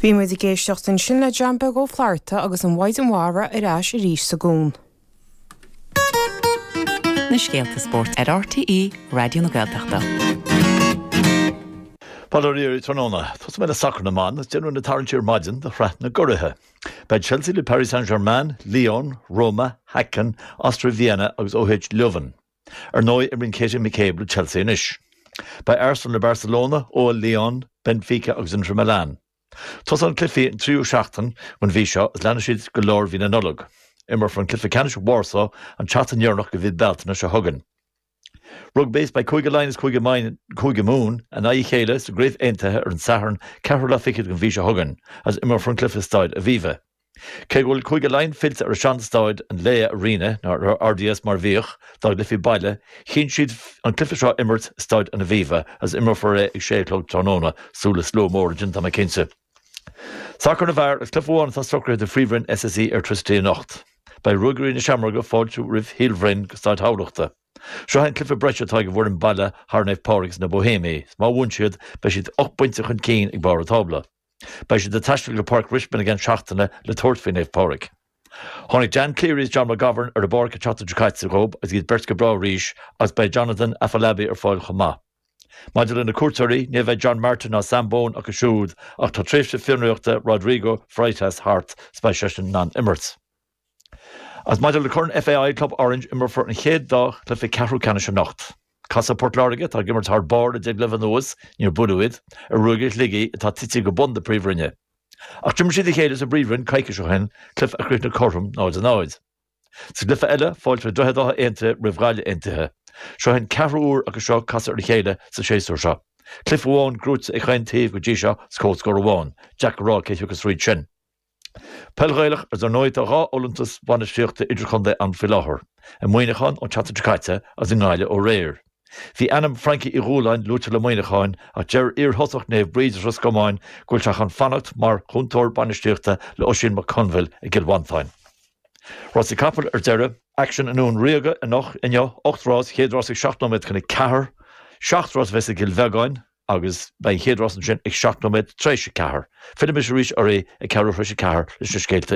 Bhí muid ag éisteacht ansin le John Beag Ó Flatharta agus an Mhaighdean Mhara ar ais arís sa gCuan. na scéalta spóirt ar RTÉ Raidió na Gaeltachta. Bail oraibh tráthnóna, tosóidh mé le sacar na mban agus déanadh na tarraingtí ar maidin do Shraith na gCuraidh. Beidh Chelsea le Paris Saint-Germain, Lyon, Roma, Häcken, Austria Vienna agus OH Leuven. Ar ndóigh, imríonn Katie McCabe le Chelsea anois. Beidh Arsenal le Barcelona, OL Lyon, Benfica agus Inter Milan. Tosaíonn cluichí an tríú seachtain den mhí seo agus leanfaidh siad go lár mhí na Nollag. Imreofar an cluiche ceannais i Warsaw an tseachtain dheireanach de mhí Bealtaine seo chugainn. Rugbaí, Is beidh Cúige Laighean agus Cúige Mumhan in aghaidh a chéile sa gCraobh Aontaithe ar an Satharn, ceathrú lá fichead den mhí seo chugainn, agus imreofar an cluiche i Staid Aviva. Cé go bhfuil Cúige Laighean fillte ar shean-staid an Laya Arena nó an RDS mar a bhíodh, dá gcluichí baile, chinn siad an cluiche seo a imirt i Staid an Aviva agus imreofar é ag sé a chlog tráthnóna, súil le slua mór ansin tá mé cinnte. Sacar na bhfear, agus cluiche amháin atá socraithe do Phríomhroinn SSE Airtricity anocht. Beidh Ruagairí na Seamróige ag fáiltiú roimh Shíol Bhroin go Staid Thamhlachta. Seo é an cluiche breise atá ag an bhfoireann baile thar Naomh Pádraig is na Bohéimigh agus má bhuann siad beidh siad ocht bpointe chun cinn ag barr an tábla. Beidh siad ag taisteal go Páirc Richmond i gceann seachtaine le tabhairt faoi Naomh Pádraig. Tháinig Dan Cleary is John McGovern ar an bpáirc an tseachtain seo caite dhób agus iad beirt go breá arís agus beidh Jonathan Afolabi ar fáil chomh maith. Maidir le na cuairteoirí, ní bheidh John Martin ná Sam Bone acu siúd ach tá tréimhse fionraíochta Rodrigo Freitas thart is beidh seisean in ann imirt. As maidir le Corn FAI Club Orange, imreofar an chéad dá chluiche ceathrú ceannais anocht. Casfaidh Port Láirge, atá ag imirt thar barr le deich gcluiche anuas, níor buaileadh iad, ar Ruagairí Shligigh, atá tite go bun na Príomhroinne. Ach d'imir siad a chéile sa bPríomhroinn coicís ó shin, cluiche a chríochnaigh cothrom 0-0. Sa gcluiche eile, fáilteoidh Droichead Átha Aontaithe roimh Ghaillimh Aontaithe. Seo é an ceathrú huair acu seo casadh ar a chéile sa séasúr seo. Cluiche amháin gnóite ag chaon taobh go dtí seo 's comhscór amháin. Deacair a rá cé thiocfas fríd sin. Peil Ghaelach, Is ar ndóigh tá dhá fholúntas bainistíochta idirchontae ann faoi láthair, i Muineachán an tseachtain seo caite agus i nGaillimh aréir. Bhí ainm Frankie Uí Dhúláin luaite le Muineachán ach deir iarthosaí Naomh Bríd as Ros Comáin go bhfuil sé chun fanacht mar chúntóir bainistíochta le Oisín McConville i gCill Mhantáin. Rásaí capall ar deireadh. Aicsean i nDún Ríoga anocht, inniu. Ocht rás, chéad rás ag seacht nóiméad chun a ceathair. Seacht rás a bheas i gCill Bheagáin. agus beidh an chéad rás ansin ag seacht nóiméad tar éis a ceathair. Fillfidh mise arís oraibh ag ceathrú thréis a ceathair leis na scéalta